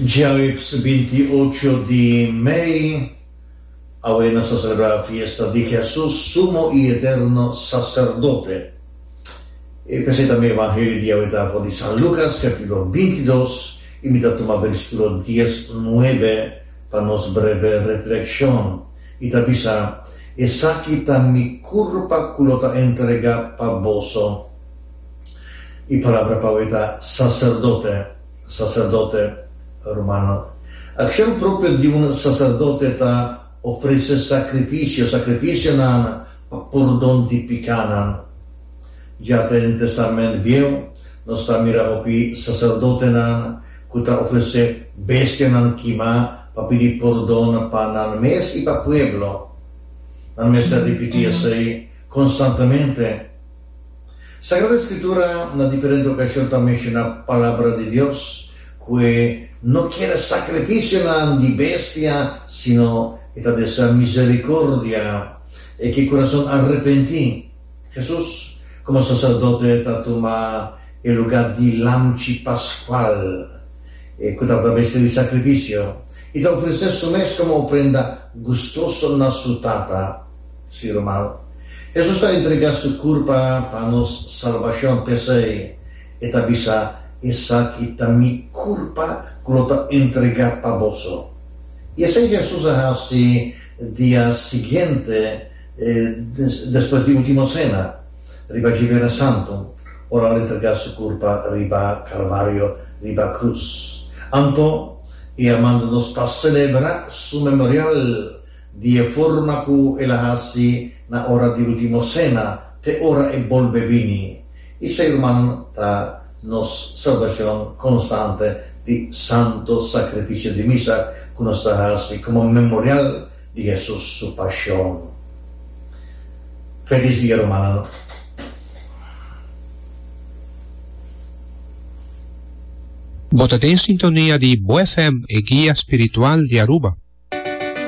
Djaüips binti ocho di mei, awe nos ta selebrá fiesta di Hesus, Sumo i Eterno Saserdote. E p'esei tambe evangelio di awe ta for di San Lucas, capítulo binti dos, i mi ta tuma versículo dies nuebe pa nos breve reflexion. I ta bisa, Esaki ta mi curpa cu lo ta entregá pa boso. E palabra pau ei ta saserdote, saserdote, hermano. Akshon propio di un saserdote ta ofrese sakrifisio, sakrifisionan pa pordon di pikánan. Dja den Tèstamènt Bieu nos ta mira hopi saserdotenan ku ta ofresé bestianan kimá pa pidi pordon pa nan mes i pa pueblo. Nan mester ripití esei konstantamente. Sagrada Escritura na diferente ocasion ta menciona Palabra di Dios cu e no kiere sacrificionan di bestia sino e ta desea misericordia e cu e curason arrepenti. Jesus, como Sacerdote, ta tuma e lugar di lamchi pascual e cu tabata bestia di sacrificio y ta ofrece su mes como ofrenda gustoso na su Tata. Si ruman, Hesus ta entregá su kurpa pa nos salbashon, p'esei e ta bisa, Esaki ta mi kurpa ku lo ta entregá pa boso. I esei Hesus a hasi dia siguiente despues di Ultimo Sena, riba dje Biernes Santu, ora al entregá su kurpa riba Kalvario, riba krus. Anto, e a manda nos pa selebrá su memorial. di e forma ku el a hasi na ora di Ultimo Sena te ora e bolbe bini, i Su Herman ta nos salbashon konstante di santo sakrifisio di misa ku nos ta hasi komo memorial di Hesus Su Pashon. Felis dia rumannan. Bo ta den sintonia di Bo FM, e guia spiritual di Aruba.